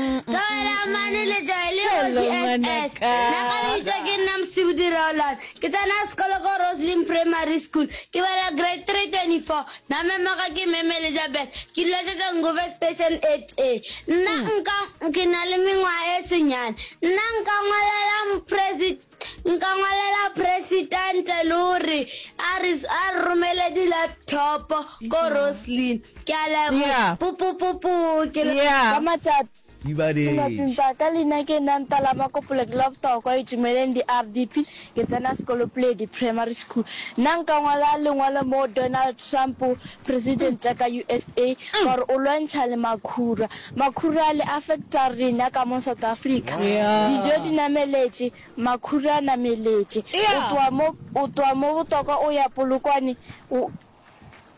Tokomane le Joel e Hello, ngwetši SS. ngwanaka. Nagaleitša ke nna Mosibudi Raolan. Ke tsena sekolo ko Roslyn Primary School. Ke bala grade 3, 24. Na memoga ke Mme Melizabeth. Ke dula Tšotšongove Station 8A. Nna nka ke na le mengwaga e senyane. Nna nka ngwalela Mopresidente Nka ngwalela Presidente le gore a re a re romele di laptop ko Roslyn. Ke a leboga. Yeah. Pu pu pu pu ke le Yeah. Ka matšat Ibadetše. Tšhematsing tsa ka leina ke nna Ntala Makopole ke la botago kwa Itumeleng di-RDP ke tsena sekolo Puledi Primary School. Nna nka ngwala lengwalo moo Donald Trump Presidenta ka usa ka gore o lwantšha le makhura. Makhura le affecta rena ka mo South Africa. Dijo di nameletše, makhura a nameletše. O tloga mo, o tloga mo Botoka o ya Polokwane, o,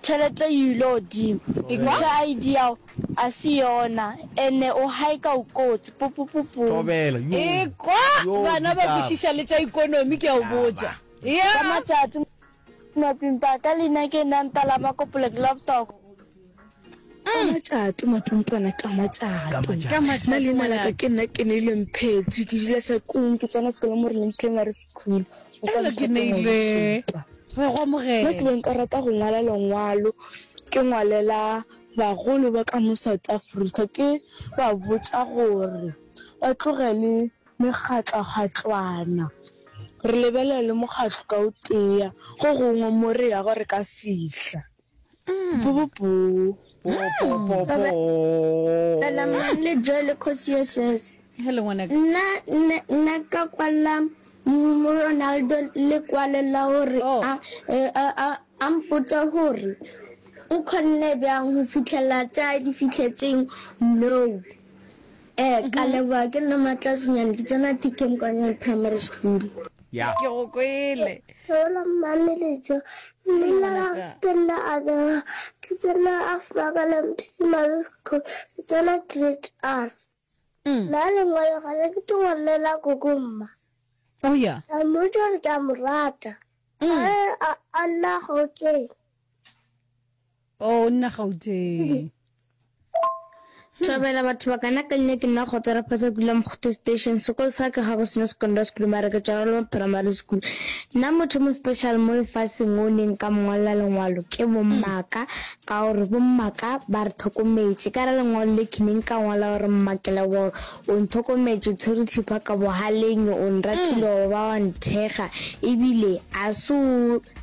tšhelete e ile godimo. Ekwa? Ša ID ya go a se yona, ene o hike-a o kotsi. Pupupupum. Thobela, yo. Ekwa? Yo, Bana ba ditaba. kwešiša le tša ikonomi, ke a o Ditaba. botša. Ka Ea! matšatši. Mapimpaka leina ke nna nta la makopole globtok. Ka matšato mapimpana ka matšato na leina la ka ke nna ke neile mphetsi ke dula sa kung ke tsena sekolo mo re leng primary school ele ke neile re go mogela mo ke beng ka rata go ngwala lengwalo ke ngwalela bagolo ba ka mo south africa ke ba botsa gore ba tlogele Megatlagatšwana. Re lebelele mokgatlo ka o tee, go gongwe mo re yago re ka fihla. Talamang le Joele Kgosi ye sese. Hello ngwanaka. Nna nna nna ka kwalla mo Ronaldo le kwale la hore oh. a a a a mpotsa hore o khonne bjang ho fitlhela tsa di fitlhetseng no. Ee, ke a leboga. Ke nna Matlasenyane, ke tsena TK Mokanyane Primary School. Ya. Ke go kwele. Ke wela mmane lejo. Leina la ka ke nna Abela, ke tsena Afmakaleng Primary School, ke tsena Grade R. Nna lengwalo ga le ke tlo ngwalela koko mma. Oh ya. Ka mmotša gore ke a mo rata. A re a nna Gauteng. Oh, o nna Gauteng. Thabela batho ba kana ka nne ke nna go tsara phata kula mokgotho station sekolo sa ke ga go seno secondary school mara ke tsara lo primary school nna motho mo special mo lefaseng o neng ka mongwalla lengwalo ke bommaka ka gore bommaka ba re tlhokometse ka ra lengwalo le ke neng ka ngwala gore mmakela boro o ntlhokometse tshwere thipa ka bohaleng o nratile gore ba wa nthega ebile a se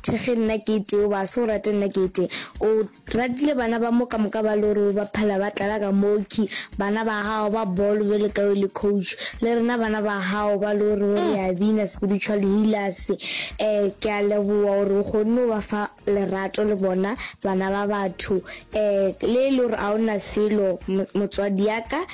Thekge nna ke tee o ba se o rate nna ke tee o ratile bana ba mo ka moka ba lo re ba phela ba tlala ka moki bana ba gago ba bolo bjale ka o le coach le rena bana ba gago ba lo re re a bina spiritual healers eh ke a leboa gore o kgonne o ba fa lerato le bona bana ba batho eh le le gore a ona selo motswadi yaka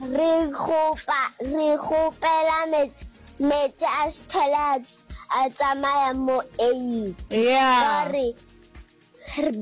Re kgopa, re kgopela metse, metse a šthele a, a tsamaya mo Elim. Yeah. Ba re,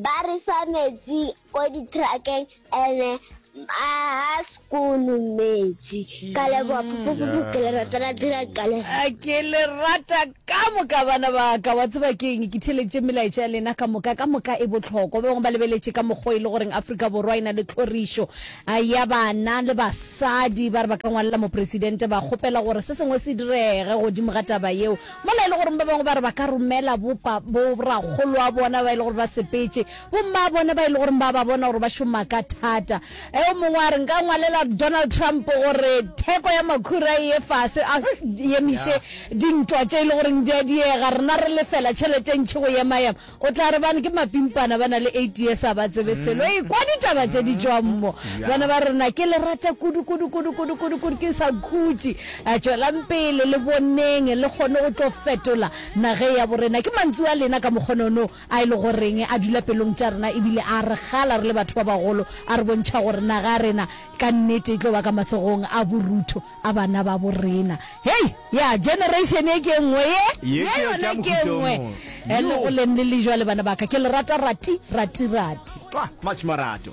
ba re fa metsi ko ditrakeng ene a ha sekolo metsi ka leboa pupupupu ke le rata la dira ka le A ke le rata ka moka bana ba ka wa tseba ke eng ke theletše melaetša ya lena ka moka ka moka e bohlokwa ba bangwe ba lebeletše ka mokgwa e le goreng afrika borwa e na le tlhorišo A eya bana le basadi ba re ba ka ngwalela Mopresidente ba kgopela gore se sengwe se direge godimo ga taba yeo, mola e le goreng ba bangwe ba re ba ka romela bo pa, bo rakgoloabona ba e le gore ba sepetše, bo mmaabona ba e le goreng ba ba bona gore ba šoma ka thata. E, o mongwe a re, Nka ngwalela Donald Trump gore theko ya makhura e ye fase, a emiše dintwa tše e le goreng di a diega, rena re lefela tšhelete e ntši go ema-ema. O tla re bana ke mapimpana ba na le eight years a ba tsebe selo e kwa ditaba tše di tšwang mo bana ba rena ke le rata kudu kudu kudu kudu kudu kudu ke sa khutši a tšwelang pele le boneng le kgone o tlo fetola nage ya borena ke mantsu a lena ka mokgonono a e le goreng a dula pelong tša rena ebile a re gala re le batho ba bagolo a re bontšha gore naga ya rena ka nnete e tlo ba ka matsogong a borutho a bana ba bo rena. Hei! Ya, generation ye ke e nngwe ye, Ye ye ke ya- ke ya yona ke e mohuta o nngwe. mong. E le Yoo. go leng le le jwale, bana ba ka, ke le rata rati, rati, rati. Tlwa, much marato.